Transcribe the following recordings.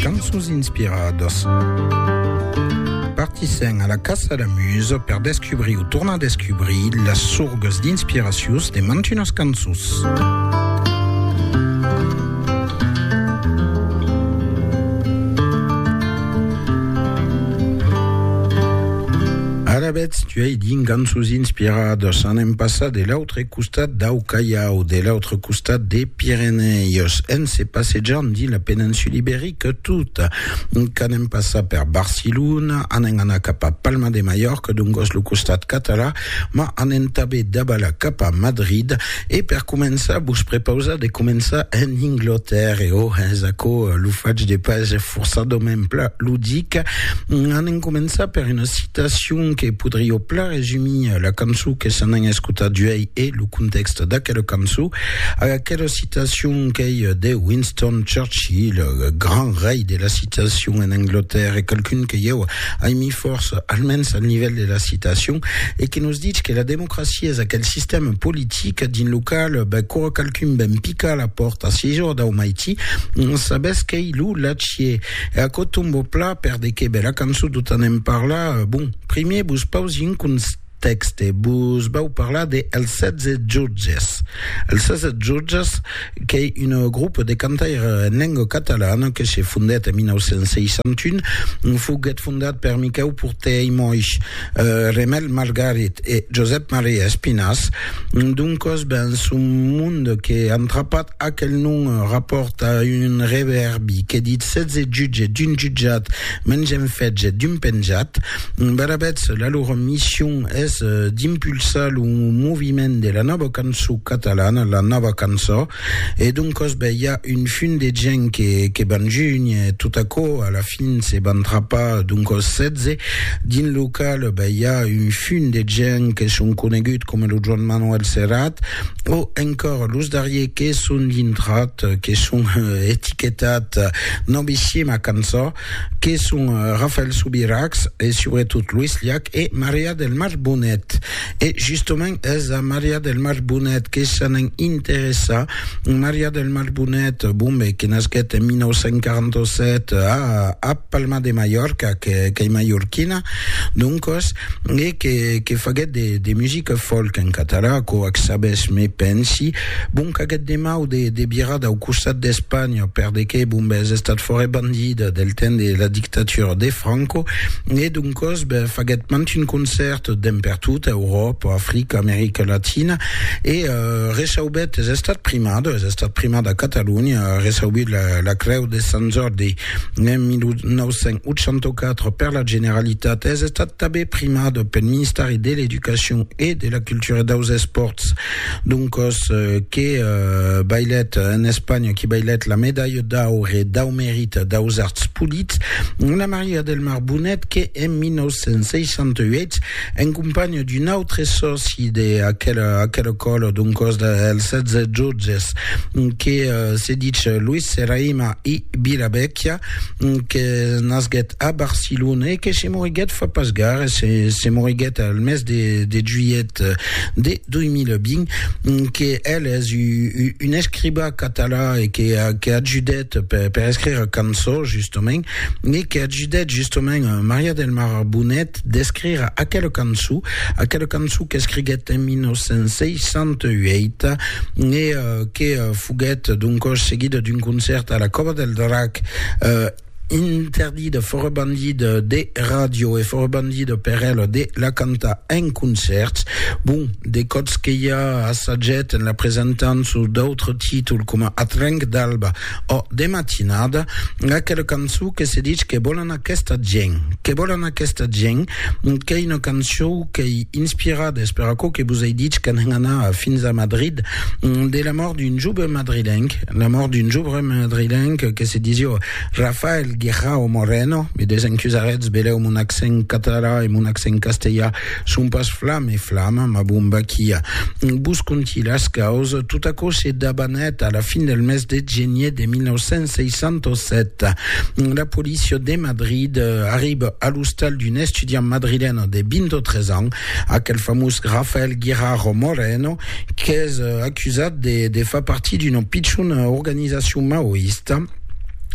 Cançons inspiradas Partissèm a la caça la musa per descubrir o tornar a descubrir las sorgas d'inspiracions de mantunas cançons. Alavetz, tu ai dins cançons inspiradas, anem passar de l'autre l'autre costat dau Callao, de l'autre costat de Pirenèus, en se passejant dins la peninsula iberica tota. Qu'anem passar per Barcelona, anem anar cap a Palma de Mallorca, dongos lo costat català, ma anem tanben davalar cap a Madrid, e per començar vos prepausar de començar en Inglotèrre, o es aquò lo fach de pas forçadament pla ludic, anem començar per una citacion que podrió plaire, resumir la cançon que s'en an escutat uèi e lo contèxt d'aquela cançon, aquela citacion qu'ei de Winston Churchill, grand rei de la citacion en Anglatèrra, e qualqu'un que ieu aimi fòrça, almens al nivèl de la citacion, e que nos ditz que la democracia es aquel sistèma politic dins lo qual quora qualqu'un ven picar a la pòrta si jo dau maiti, sabètz qu'ei lo lachier. E aquò tomba plat per de qué? Ben la cançon tot en en parlar, bon, Primièr vos pausi un contèxte, vos vau parlar de Els 16 Jutges. Els 16 Jutges qu'ei un grup de cantaire en lenga catalana que se fondèt en 1961, foguèt fondat per Miquèu Porter i Moix, Remèl Margarit e Josèp Maria Espinàs, doncòs ben son mond que entrapat aquel nom rapòrta un revèrbi que ditz 16 jutges d'un jutjat, Me'n gèm fetge d'un penjat. Barabets, la lor mission es d'impulsar lo moviment de la nòva cançó catalana, la nòva cançó, e d'un cosbe i a un fum de gent que, que van junh, e tot aquò a la fin se van trapar, d'un còs 16, dins lo cal be i a un fum de gent que son conegut coma lo Joan Manuel Serrat, o encòr los darrier que son dintrat, que son etiquetat, Novissima cançó que son Rafael Subirachs e subretot Luis Llach e Maria del Mar Bonet. E justament es a Maria del Mar Bonet que se n'en interessa. Maria del Mar Bonet, bon ben, que nasquèt en 1947 a Palma de Mallorca, qu'ei mallorquina, doncos, e que que faguèt de de musica folk en català quò ac sabes me pensi bon qu'aguèt de mau de de virar dau costat d'Espanha per de que bon b'es estat fòre bandida del temps de la dictatura de Franco e doncòs be faguèt mant un concèrt demb per tota Euròpa Africa America Latina e reçaubèt es estat primada es estat primada a Catalonha reçaubut la la creu de Sant Jordi En 1984, per la Generalitat, es estat tabé primat pel Ministèri de l'Educacion e de la Cultura e daus Espòrts. Doncòs, eh, que eh, bailèt en Espanha, que bailèt la medalha d'aure dau merit daus arts polits, Anna Maria del Mar Bonet, que en 1968 en companha d'un autre sòci de aquela, aquela còla, d'un còs dels Setze Jutges, que se ditz Luis Serraima i Vilavecchia, que nasguèt a Barcelona e que se moriguèt fa pas gaire, se, se moriguèt al mes de, de juilhet de 2020, que el es un escribà català e que, que ajudèt per, per escrire cançons, justament, e que ajudèt, justament, Maria del Mar Bonet, d'escrire aquela cançon, aquela cançon qu'escriguèt en 1968 e que foguèt doncòs seguida d'un concèrt a la Còva del Drac, interdida, fòra bandida de ràdio e fòra bandida per ela de la cantar en concèrts. Bon, de còps que i a assajèt en la presentant sus d'autres títols coma Atrenc d'alba, Ò, de matinada, aquela cançon que se dich Que vòlan aquesta gent, que vòlan aquesta gent, qu'ei una cançon qu'ei inspirada, es per aquò que vos ei dich qu'an anat fins a Madrid, de la mòrt d'un joven madrilenc, la mòrt d'un joven madrilenc que se disió Rafael Guirao Moreno, me desencusaretz, velèu mon accent catalan e mon accent castellan Son pas flam e flam, ma bon Baquia. Vos conti las caus, tot aquò se dabanèt a la fin del mes de genier de 1967. La policia de Madrid arriba a l'ostal d'un estudiant madrilèn de 23 ans, aquel famós Rafael Guirao Moreno, qu'es acusat de, de far partir d'una pichona organizacion maoista,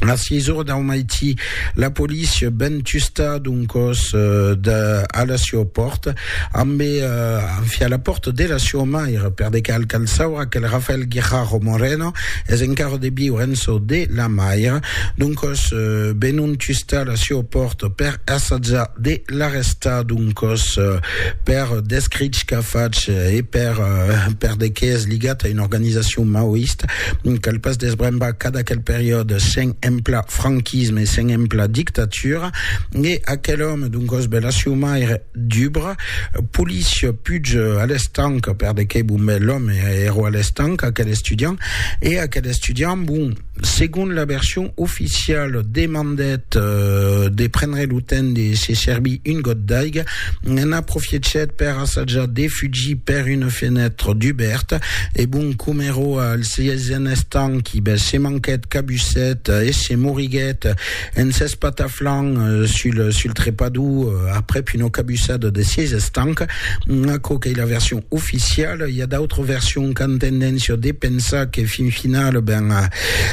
A 6 ora dau maití, la polícia ven tusta d'un còs eh, de, a la siò pòrta, ambe eh, anfi a la pòrta de la siò maire, per de cal cal saura quel Rafael Guijarro Moreno es encara de viure en çò de la maire, d'un còs eh, venon tusta a la siò pòrta per assajar de l'arrestar, d'un còs eh, per d'escrich qu'a fach eh, e per eh, per de qué es ligat a una organizacion maoista, Cal pas desbrembar cada aquel periòde sen emplar franquisme e sen emplar dictatura. E aquel òme d'un còs bèl aciumaire, dubre, polis, puig a l'estanca, per de qué bon bèl l'òme èro a l'estanca, aquel estudiant, e aquel estudiant, bon, segon la version oficiala, demandèt de prendre lo temps de se servir un got d'aiga, N'en aprofiechèt per assajar de fugir per una fenètra dubèrta e bon com ero al sièisen estanqui, bes se manquèt cabusset e se moriguèt en s'espataflant sul sul trepador aprèp una cabussada de sièis estancs. Aquò qu'ei la version oficiala, i a d'autras versions qu'an tendéncia de pensar que fin finala, ben,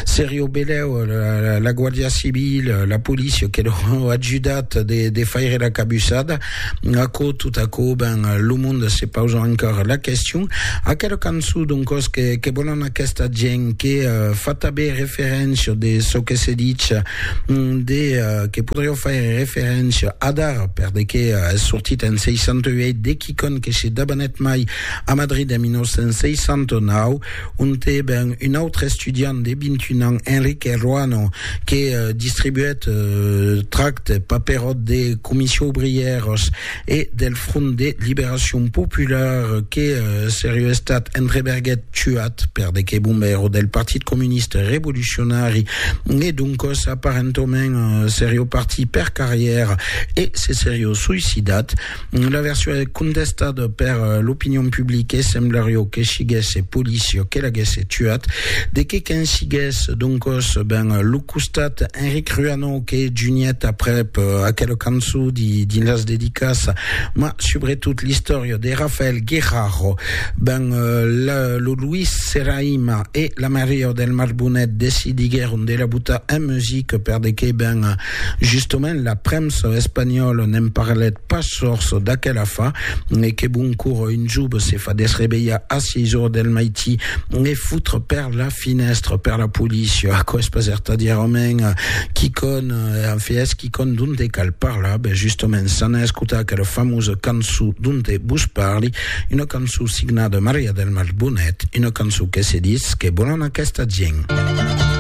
seria o belèu la Guardia Civila, la polícia que l'au ajudat. de faire la cabussada, aquò, tot aquò, ben, lo monde se pausa encore la question. Aquela cançon, donc, còs que, que vòlan aquesta gent que uh, fa tabé referéncia de çò que se ditz, mm, de, uh, que podrió faire referéncia adar, per de que uh, es sortit en 68 de quicon que se dabanet mai a Madrid en 1969, ont e ben un autre estudiant de 21 ans, Enrique Ruano, que distribuèt tractes, paperòt de Comissions Ouvrières e del Front de Liberacion Popular que seriu estat entreberguèt tuat per de que bombèro del Partit Comuniste Revolucionari e doncòs aparentament seriu partit per carrièra e se seriu suicidat. La version es contestada per l'opinion publique, semblario que siguesse policia que l'aguesse tuat. De que qu'en sigues, doncos, ben, lo costat Enric Ruano que juniet aprèp aquela cançon dins las dedicas, ma subretot l'istòria de Rafael Guerraro, ben, lo Luis Serraima e la Maria del Mar Bonet decidiguèron de la botar en musica per de que, ben, Justament la premsa espanhòla ne'n parlèt pas sors d'aquel afar, e que bon cor un jove se fa desrevelhar a 6 ors del maití e foutre per la finèstra per la polícia? Aquò es pas ertadièrament quicòn, en fait es quicòn donte cal parlar, ben justament s'anà escotar aquela famosa cançó donte vos parli, una cançó signada Maria del Mar Bonet, una cançó que se ditz, que volan aquesta gent.